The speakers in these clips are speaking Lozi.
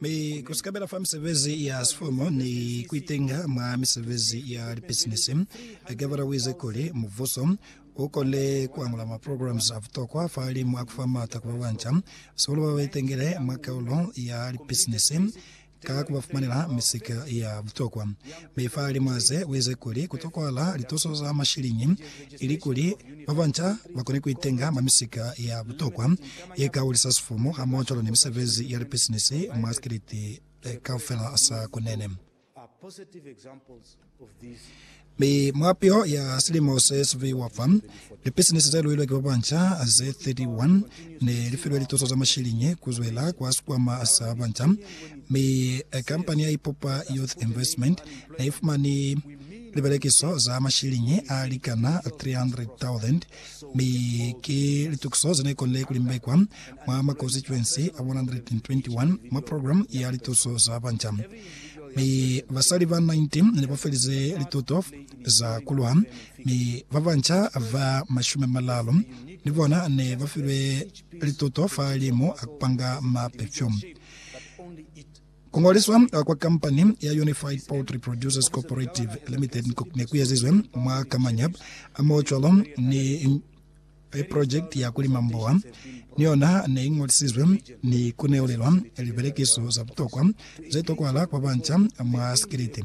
Mi ku sikabela fa misebezi ya sifomo ni ku itenga mwa misebezi ya lipisinisi, Gavara uize kuli, Mubuso u konile ku angula ma programs a butokwa fahalimu a ku fa maata ku ba banca, sihulu ba ba itengile mwa kaulo ya lipisinisi, ka ku ba fumanela misika ya butokwa. Mi fahalimu a ze, uize kuli ku tokwahala lituso za mashiliñi Ilikuli babanca bakone kuitenga mwa misika ya butokwa yekahulisa sifumu hamohocwalo ni misebezi ya lipisinisi mwa sikiliti kaufela sa Kunene. Mi mwa piho ya silimo se siviwa fa, lipisinisi zeluilwe ki babanca ze 31 ne lifilwe lituso za mashiliñi kuzwela kwa sikwama sa banca, mi kampani ya Ipupa Youth Investment neifumani Libelekiso za mashiliñi a likana 300,000 mi ki litukiso ze ne konile ku limbekwa mwa makonstituensi a 121 mwa program ya lituso za banca. Mi basali ba 19 ne ba felize lituto za ku lwa, mi ba banca ba mashumi a malalu ni bona ne ba filwe lituto fa limu a ku panga mapefyumu. Ku ngoliswa kwa kampani ya Unified Poultry Producers Cooperative Limited ne ku ezizwe mwa Kamanyep hamohocwalo ni iprojekiti ya ku lima mboha, ni yona ne i ngolisizwe ni ku neulelwa libelekiso za butokwa ze tokwahala kwa banca mwa sikiliti.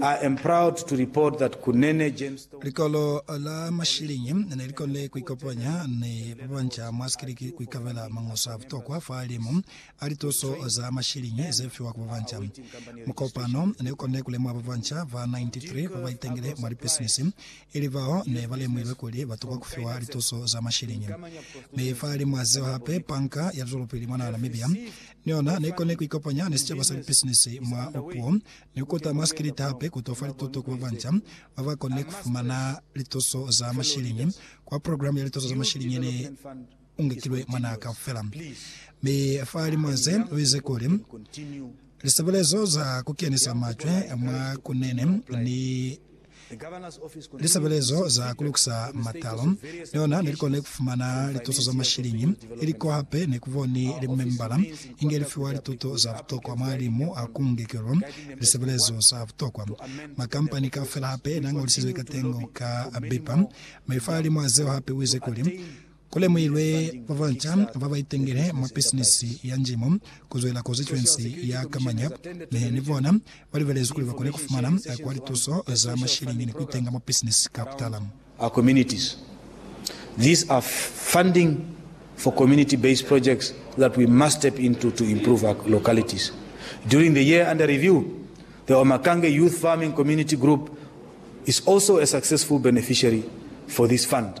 I am proud to report that Kunene Gemstone. Likolo la mashilingi ne li konile ku ikopanya ni ba banca mwa sikiliki ku ikabela mañoso a butokwa fa limu a lituso za mashilingi ze fiwa ku ba banca. Mukopano ne u konile ku lemuha ba banca ba 93 ba ba itangile mwa lipisinisi, ili bao ne ba lemuhilwe kuli ba tokwa ku fiwa lituso za mashilingi. Mi fa limu a zeo hape, Panka ya Zwelopili mwa naha Namibia ni yona ne i konile ku ikopanya ni sicaba sa lipisinisi mwa puo ni ku kuta masikiliti hape ku to fa lituto ku babanca ba ba konile ku fumana lituso za mashiliñi kwa programu ya lituso za mashiliñi ye ne u ngekilwe mwa naha kaufela. Mi fa limo ze, u ize kuli, Lisebelezo za ku kenisa macwe mwa kunene ni Lisebelezo za kulukisa matalo liona nelikone kufumana lituso za mashiliñi, ili ko hape nekuboni limembala inge lifiwa lituto za butokwa mwa limu a kuungekelo lisebelezo za butokwa. Makampani kaufela hape nañolisizwe katengo ka bipa maifa a limu azeo hape uize kuli, Ku lemuhilwe ba banca ba ba itengele mwa bisinisi ya njimo ku zwela konsituensi ya Kamañap, mi ni bona ba libelezwi kuli ba kone ku fumana kwa lituso za masheleñi ni ku itenga mwa bisinisi ka butala. our communities. These are funding for community-based projects that we must step into to improve our localities. During the year under review, the Omakange Youth Farming Community Group is also a successful beneficiary for this fund.